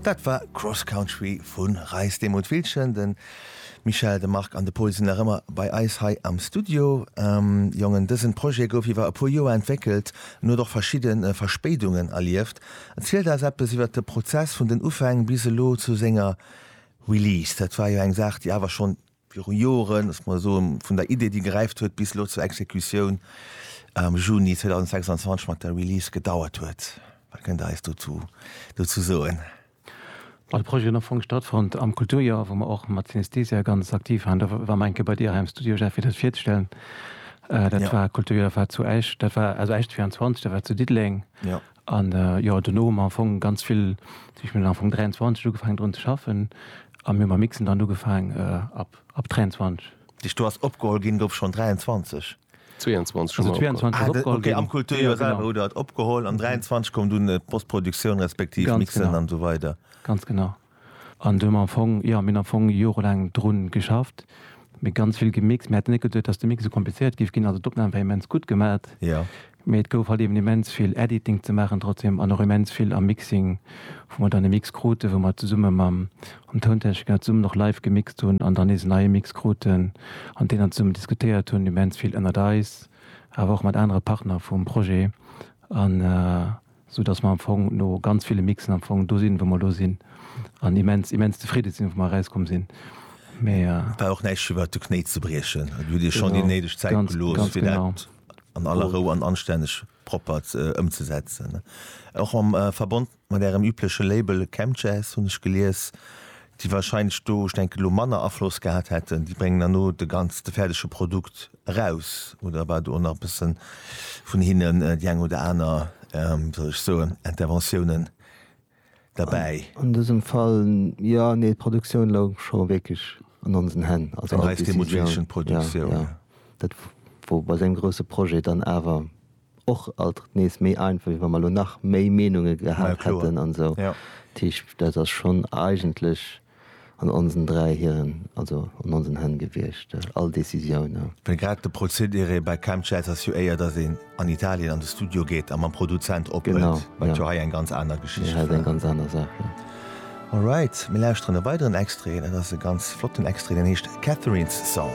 Dat war Cross Country vu Reis Demuth Wiltgen. De Michel, de Marc an de Paul sinn nach ëmmer bei eis hei am Studio. Jongen, dësen Projet gouf iwwer e puer Joer entwéckelt an huet och verschidden Verspéidungen erlieft. Erzielt eis eppes iwwer de Prozess vun den Ufäng bis elo zu senger Release. Dat war jo eng Saach déi awer schonn Viru Joren, ech mol soen, vun der Idee, déi geräift huet, bis elo zur Exekutioun am Juni 2026 mat der Release gedauert huet. Wat kënnt Dir eis dozu dozou soen? Well de Projet huet am Fong stattfonnt am Kulturjoer, wou mer och mat Synesthesia ganz aktiv waren. Da war mer eng Kéier bei Dir hei am Studio, Jeff, fir dat virzestellen. Dat war, Kulturjoer war zu Esch, dat war also Esch 24, dat war zu Diddeleng. An jo, dono hu mer am Fong ganz vill, ech mengen am Fong 23 ugefaangen drun ze schaffen a mir hu mam Mixen dann ugefaang ab ab 23. Déi do ass opgeholl ginn, gouf schonn 23? 22 hu mer opgeholl. Ah de, okay am Kulturjoer selwer hutt Der et opgeholl an 23 koum dunn d'Postproduktioun respektiv d'Mixen an esou weider. Ganz genau. An do hu mer am Fong, jo, mir hunn am Fong jorelaang dru geschafft, mee ganz vill gemixt. Mir hätten net geduet, dass de Mix esou komplizéiert géif ginn. Also d'Opnam war immens gutt gemat, mee et gouf halt eben immens vill Editing ze maachen trotzdem an och immens vill am Mixing, wou mer dann e Mix kruten, wou mer zesumme mam Tountechniker zesummen och live gemixt hunn an dann nees en neie Mix kruten an deen dann zesummen diskutéiert hunn, immens vill ënnert eis, awer och mat anere Partner vum Projet an. sou dass mer am Fong no ganz ville Mixen am Fong do sinn, wou mer elo sinn an immens, immens zefridde sinn, wou mer erauskomm sinn. Mee. Et war och näischt fir iwwert de Knéi ze briechen. Et huet Iech schonn déi néideg Zäit gelooss, fir dat an aller Rou an anstänneg propper ëmzesetzen. Och am Verbond mat Ärem übleche Label Chemjazz hunn ech gelies, déi wahrscheinlech do, ech denken elo, manner Afloss gehat hätten, déi bréngen herno de ganz, de fäerdege Produkt eraus, oder war do och nach e bësse vun hinnen déi eng oder aner, wéi soll ech soen, Interventiounen derbäi? An dësem Fall, jo, nee, d'Produktioun louch scho wierklech an onsen Hänn, also all d'Décisioun, jo, jo, dat wor bei esou engem grousse Projet dann awer och alt nees méi einfach wéi wa mer elo nach méi Meenunge gehat hätten an esou. Tisch dat ass schonn eigentlech an onsen dräi hiren, also an onsen Hänn gewiescht all Décisiounen. Well grad de Prozedere bei Chemjazz ass jo éier, datt een an Italien an de Studio geet a mam Produzent ophëlt, wat jo hei eng ganz aner Geschicht war. Hei ass eng ganz aner Saach, jo. Alright, mir lauschteren e weideren Extrait, dat ass e ganz flotten Extrait, deen heescht Catherine's Song.